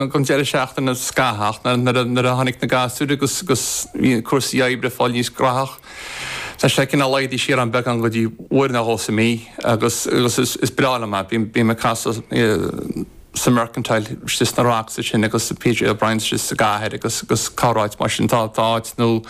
an deireadh seachtaine ar feadh scaithimh ach nuair a tháinig na gasúir agus bhí cúrsaí oibre ag fáil níos graitheach. Tá sé cineál laghdaithe siar agam beagán go dtí uair nó dhó sa mí agus is breá liom é. Bím ag casadh sa Mercantile istigh sna Rocks ansin agus sa PJ O'Briens istigh sa gcathair agus corráit mar sin. Tá áit nua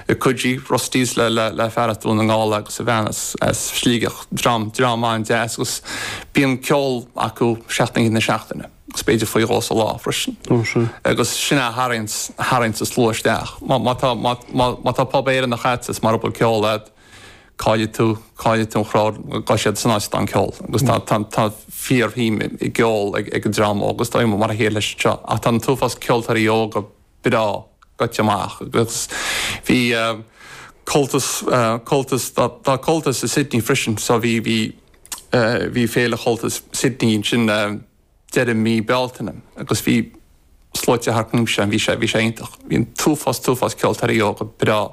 i Coogee, Rusty's le fear as Dún na nGall agus a bhean as Sligeach, dream an-deas agus bíonn ceol acu seacht n-oíche na seachtaine. Is b'fhéidir faoi dhó sa lá freisin. Agus sin é a tharraing tharraingíonns an slua isteach. Má má tá má má má tá pub Éireannach agat is mara bhfuil ceol agat caillfidh tú caillfidh tú an crowd gabhfaidh siad san áit atá an ceol. Agus tá tá tá fíorshuim i gceol ag ag an dream óg agus tá mar a chéile is anseo ach tá an t-uafás ceoltóirí óga breá goite amach agus bhí Comhaltas, Comhaltas, tá Comhaltas i Sydney freisin so bhí, bhí, bhí féile Chomhaltas Sydney ansin deireadh mí Bealtaine agus bhí sluaite thart ansin, bhí sé, bhí sé iontach. Bhí an t-uafás, t-uafás ceoltóirí óga breá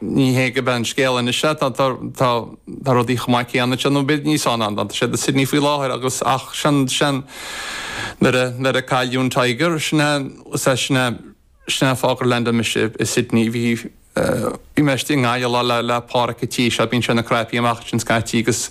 Ní hé go mbeidh an scéal anois é, tá rudaí chomh maith céanna ansin, nó b'fhéidir níos fearr ná atá siad i Sydney faoi láthair agus, ach sin, sin, nuair a, nuair a cailleadh an Tiger, sin é, is é sin é, sin é an fáth gur leaindeáil mise i Sydney, bhí, bhí mé istigh i nGaillimh lá le, le Páraic a' tí seo, bíonn sé ina craipí amach ansin scaití agus,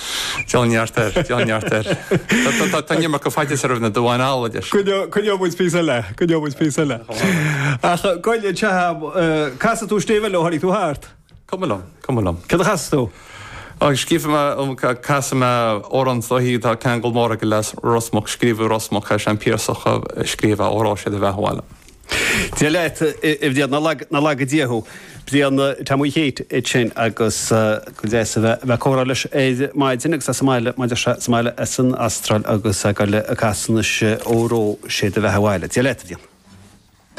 Níl neart air, níl neart air. Tá an iomarca faitís roimh na damháin alla leis. Coinneoidh muid píosa eile, coinneoidh muid píosa eile. Ach gabh i leith, an gcasfaidh tú stéibh eile ó tháinig tú thart? Cuma liom, cuma liom. Céard a chasfas tú? Ó, scríofa mé, casfaidh mé amhrán dóichí, tá ceangal mór aige le Ros Muc, scríobhadh i Ros Muc é, sé an Piarsach a scríobh é, óró sé do bheatha abhaile. Dia leat, a Bhrian, nár laga, nár laga Dia thú. Brian, tá muid thíos ansin agus go deas a bheith ag comhrá leis ar maidin agus sa mbaile, mar a deir sé, sa mbaile as an Astráil agus ag goil ag casadh ansin óró sé do bheatha abhaile. Dia leat, a Bhrian.